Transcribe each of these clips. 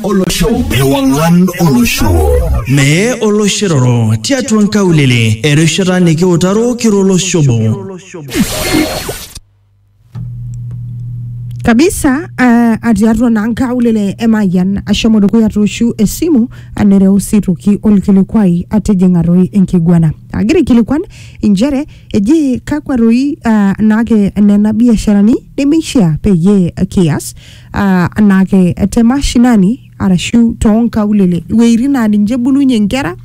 olosho ewang'an olosho mee oloshiroro tiatua nkaulele erishata nikiutaro kiro olosho obo kabisa uh, atii atua naa nkaulele emayian ashomo dukuya tooshu esimu anereu sii toki olkilikuai atijing'a toi enkiguana agira aikilikuan inchere eji kakwa toi uh, naake nena biasharani nemeishia peyie kias ah, anaake te mashinani arashu toonkaulele iwueitin naa ninche ebulunye inkera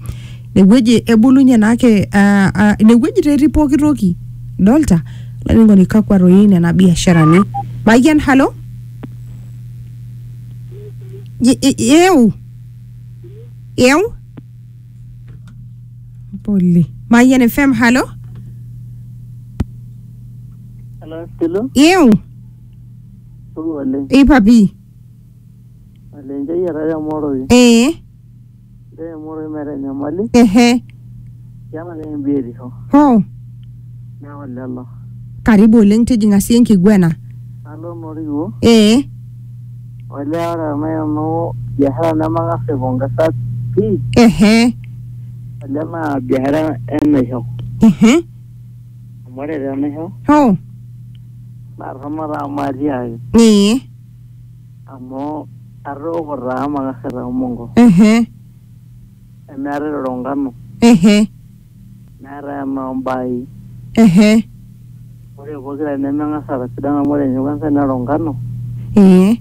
inewueji ebulunye naake ah, ah, inewueji taa etii pooki toki dolta olainining'oni kakwa toi nena biasharani mayian halo Ye- e- eu eu pole mayian fm halo Hello, Stilu. eu Supa oleng. Eipa pii. Oleng njei etaa emoroi. Ee. Njei emoroi meeta enyamali. Ehe. Keeta ake ninye biotisho. Hoo. Neeku lelo. Karibu oleng tijing'a sii enkiguena. Alo noo Riwuo. Ee. Olee ore tenaa kenoo biashara nemang'as aipongesa pii. Ehe. Olee naa biashara enaisho. Ehe. Amu ore tenaisho Hoo. naa torrono taa amu atiaaki Ee. amu atooko taa amu akasita omongo Ehe. nemeetae iroro nkano Ehe. neetae enoo mbaai. Ehe. Ore pokira nemeng'as aatasidan amu ore ninye kwanza nerok nkano. Ee.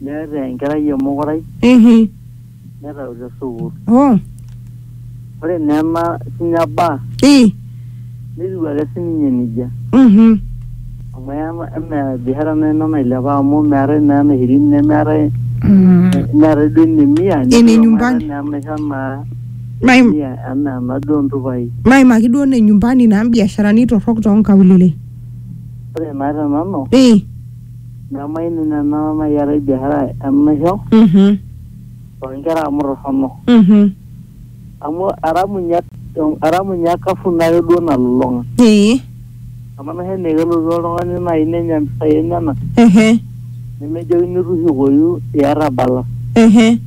Neeta enkerai emokorai Ehe. netau te sukuul. Oh. Ore naa ena sinya baa Eh. netiu ake sininye nejia. Mhm. Amu ema- emaa biashara naa ina nailepa amu meetae naa ena shirini nemeetae Mm. neetae duo ene mia Ene nyumbani. neetae naa enaisho naa Maim- mia enaa ena duo ntupai. Maimaki duo ne nyumbani naa mbiasharani torrok toonkaulele. Ore naa te nanu Eh. Nemaini nena naayiarai biashara enaisho Mhm. too nkera amu torrono. Mhm. Amu eramunyia eramunyia akafu naake duo nalulung'a. Ee. Amu enaisho enaa kelotu oltung'ani naai nenya mpisai enyenak Ehe. nemejokini tushukoyu iyata balance. Ehe.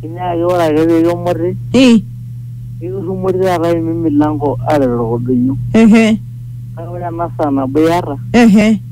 Kinyiaakaki ore ake pee kimuti Ee. nikirrumori taata aimim milango aaret orkodoyio. Ehe. Kake ore ena saa nabo iyata. Ehe.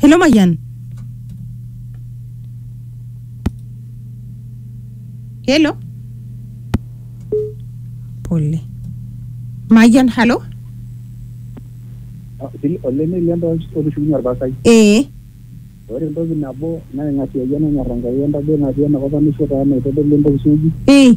Hello Mayian. Hello. Pole. Mayian, halo. olemeli entoki otushukunye orpasai Ee. ore entoki nabo naing'asiayie nanyorr Enkai entadoi natii enakop enaisho taa naitodolu entoki suuji Ee.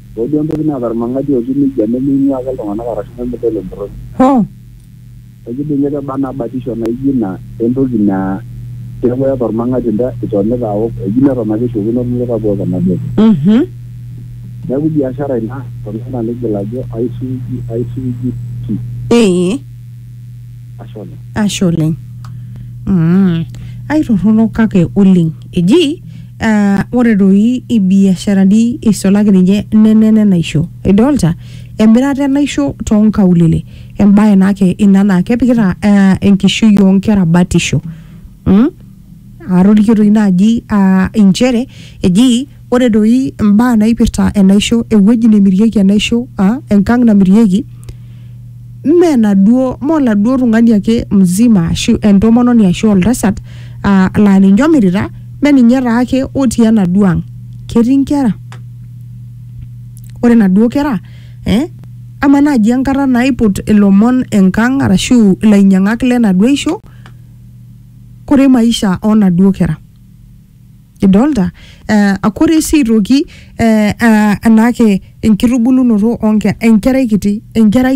Ore duo entoki naata ilmang'ati otiu neijia nemeing'uaa ake iltung'ana arashu nemedol entorroni. Hoo! Ekidung'ie te Barna batisho naaijo ina entoki naa keaku eata olmang'ati nta itonita aok, eji neton ake eishopokino ilkuluka boo tenadol. Neaku biashara ina toltung'ani oigil ajo aisuuji, aisuuji pii. Eeh. ashe oleng ashe oleng mm. aitorrono kake oleng eji uh, ore doi ibiasharani eisulaki ninye nenene naisho idolta emirata enaisho toonkaulele embaye naake ina naa kepikita uh, enkishui oonkera batisho mm? atorikio doi naaji uh, inchere eji Ore doi imbaa naipirta enaisho, ewueji nemirieki enaisho, ah, enkang' namirieki, mme enaduo, mme oladuo tung'ani ake mzima ashu entomononi ashu oltasat, ah la ninye omirita, mme ninye taake otii enaduo ang'. Ketii nkera. Ore naduo kera, eh, amaa naji enkata naiput ilomon enkang' arashu ilainyang'ak lenaduo aisho, kore maisha onaduo kera. Idolta? Eh, akore si aitoki eh, ah, enaake enkitubulunoto onke- enkerai kiti, enkerai